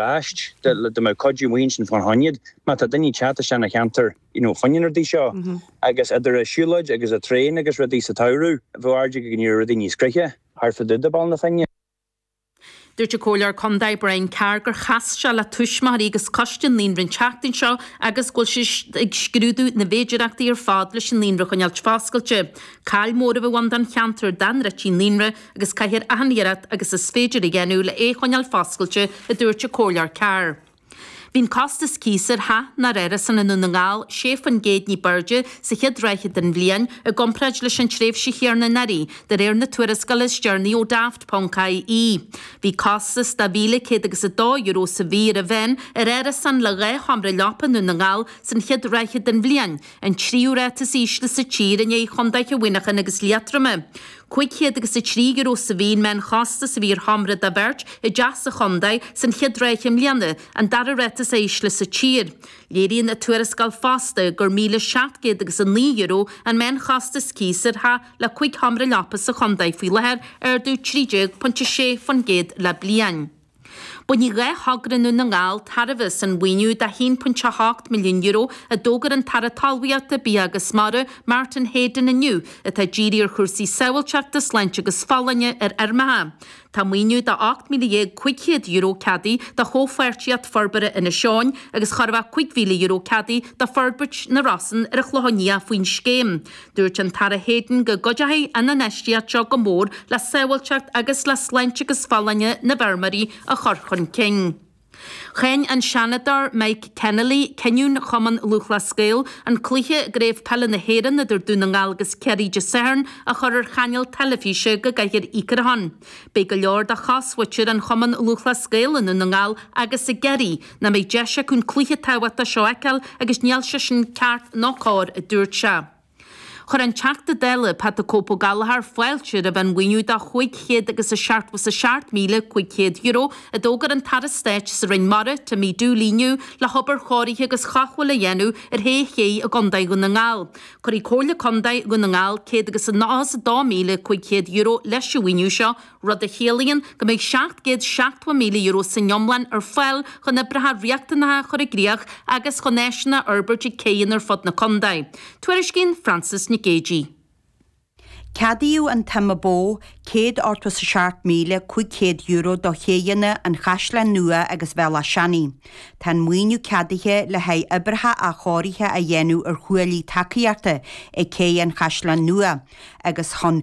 racht de le mo chuid mhaoin sin fána choinne má tá daoine ag teacht isteach na cheantair you know fá choinne na rudaí seo agus idir an siúlóid agus an traein agus rudaí sa tsamhradh bheadh airde go go ní raibh rudaí níos gnoithí thart fá dtaobh de Bhaile na Finne. Dúirt an Comhairleoir Contae Brian Carr gur chas sé le tuismitheoirí agus coiste an naíonra an tseachtain seo agus go bhfuil siad ag scrúdú na bhféidearthachtaí ar fad leis an naíonra a choinneáilt foscailte. Caill mhór a bheadh ann don cheantar dá ndruidfí an naíonra agus caithfear achan iarracht agus is féidir a dhéanamh le é choinneáil foscailte, a dúirt an Comhairleoir Carr. Bhí an costas cíos ar theach nó árasán i nDún na nGall sé faoin gcéad ní b'airde sa chéad ráithe den bhliain i gcomparáid leis an tréimhse chéanna anuraidh, de réir na tuarascála is deireanaí ó Daft.ie. Bhí costas de mhíle céad agus a dó euro sa mhí ar an mheán ar árasán le dhá sheomra leapa i nDún na nGall san chéad ráithe den bhliain, an tríú ráta is ísle sa tír i ndiaidh chontaetha Mhuineacháin agus Liatroma. cúig chéad agus a trí euro sa mhí an meánchostas a bhí ar sheomra do bheirt, i dteach sa chontae, san chéad ráithe i mbliana, an dara ráta is ísle sa tír. Léiríonn an tuarascáil fosta gur míle seacht gcéad agus a naoi euro an meánchostas cíos ar theach le cúig sheomra leapa sa chontae faoi láthair, ardú trí déag pointe sé faoin gcéad le bliain. Bainfidh dhá thogra i nDún na nGall tairbhe as an mhaoiniú de €1.8 milliún a d'fhógair an tAire Talmhaíochta, Bia agus Mara, Martin Heydon inniu, atá ag díriú ar chúrsaí sábháilteachta, sláinte agus folláine ar fheirmeacha. Tá maoiniú de €18,500 ceadaithe do Chomhpháirtíocht Forbartha Inis Eoghain agus chóir a bheith €5,000 ceadaithe do Forbairt na Rosann ar an Chlochán Liath faoin scéim. Dúirt an tAire Heydon go gcuideoidh an infheistíocht seo go mór le sábháilteacht agus le sláinte agus folláine na bhfeirmeoirí a chur chun cinn. Cháin an Seanadóir Mike Kennelly cinneadh Chumann Lúthchleas Gael an cluiche i gCraobh Peile na hÉireann idir Dún na nGall agus Ciarraí Dé Sathairn a chur ar chainéal teilifíse go gcaithfear íoc ar a shon. Beidh go leor de chosmhuintir an Chumann Lúthchleas Gael i nDún na nGall agus i gCiarraí Nach mbeidh deis acu an cluiche tábhachtach seo a fheiceáil agus níl sé sin ceart ná cóir, a dúirt sé. Chuir an Teachta Dála Pat the Cope Ó Gallchóir fáilte roimh an mhaoiniú de €577,500 a d'fhógair an tAire Stáit sa Roinn Mara, Timmy Dooley inniu le hobair chóirithe agus chothabháil a dhéanamh ar shé chéidh i gContae Dhún na nGall. Cuirfidh Comhairle Contae Dhún na nGall €192,500 leis an mhaoiniú seo, rud a chiallaíonn go mbeidh €770,000 san iomlán ar fáil chun oibreacha riachtanacha a chur i gcríoch agus chun áiseanna a fhorbairt ag céidheanna ar fud na contae. Tuairiscíonn Frances Nic Géadaigh. Ceadaíodh an tsuim ba mhó, €187,500 do chéidheanna an Chaisleáin Nua agus Bhéal Átha Seanaidh. Tá an maoiniú ceadaithe le haghaidh oibreacha athchóirithe a dhéanamh ar chuaillí tacaíochta ag céidh an Chaisleáin Nua agus chun.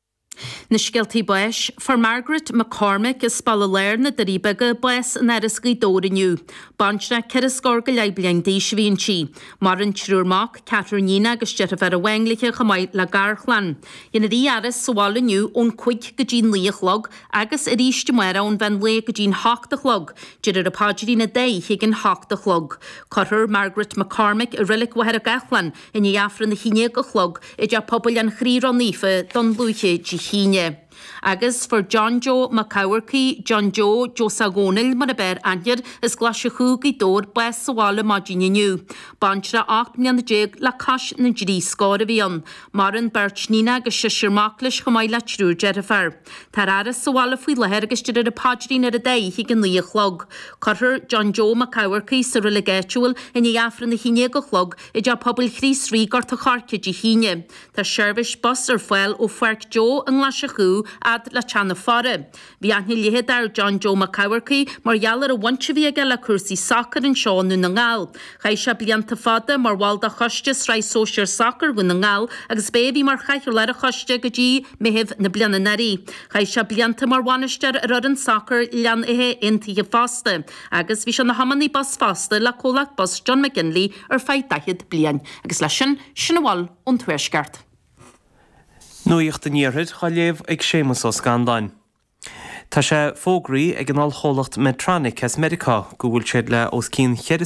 Na Scéaltaí Báis, Fuair Margaret McCormick as Baile Láir, na Doirí Beaga bás in Áras Ghaoth Dobhair inniu. Baintreach ceithre scór go leith bliain d'aois a bhí inti. Maireann triúr mac, ceathrar iníon agus deirfiúr amháin léithe chomh maith le garchlann. Déanfar í a fhaire sa bhaile inniu ón cúig go dtí'n naoi a chlog agus aríst amárach ón mheán lae go dtí'n hocht a chlog, déarfar an paidrín an dá oíche ag an hocht a chlog. Cuirfear Margaret McCormick i Reilig Mhachaire Gathlán I ndiaidh Aifreann a haon déag a chlog, i dTeach Pobail an Chroí Ró-Naofa Dún Lúiche Dé hAoine. Agus fuair John Joe Mac Eachmharcaigh, John Joe Joseph Dhónaill mar ab fhearr aithne air, as Glaise Chú, Gaoth Dobhair, bás sa bhaile maidin inniu. Baintreach 18 mbliana le cois na dtrí scór a bhí ann. Maireann beirt iníon agus seisear mac leis chomh maith le triúr deirfiúr. Táthar á fhaire sa bhaile faoi láthair agus déarfar an paidrín ar an dá oíche ag a naoi a chlog. Cuirfear John Joe Mac Eachmharcaigh sa reilig áitiúil i ndiaidh Aifreann a haon déag a chlog, I dteach pobail Chríost Rí, Gort a' Choirce, Dé hAoine. Tá seirbhís bus ar fáil ó Pháirc Joe i nGlaise Chú fhad le teach na faire. Bhí aithne leitheadach ar John Joe Mac Eachmharcaigh, mar gheall ar an bhaint a bhí aige le cúrsaí sacair anseo i nDún na nGall. Chaith sé blianta fada mar bhall de choiste Sraith Sóisear Sacair Dhún na nGall agus b'é a bhí mar chathaoirleach a' choiste go dtí Meitheamh na bliana anuraidh. Chaith sé blianta mar bhainisteoir ar fhoireann sacair Ghleann Átha Aontaithe fosta. agus bhí sé ina thiománaí bus fosta le comhlacht bus John McGinley ar feadh daichead bliain. Agus leis sin, sin a bhfuil ón Tuaisceart. Nuacht an Iarthair á léamh ag Séamas Ó Scanláin. Tá sé fógraithe ag an ollchomhlacht Medtronic as Meiriceá go bhfuil siad le os cionn cheithre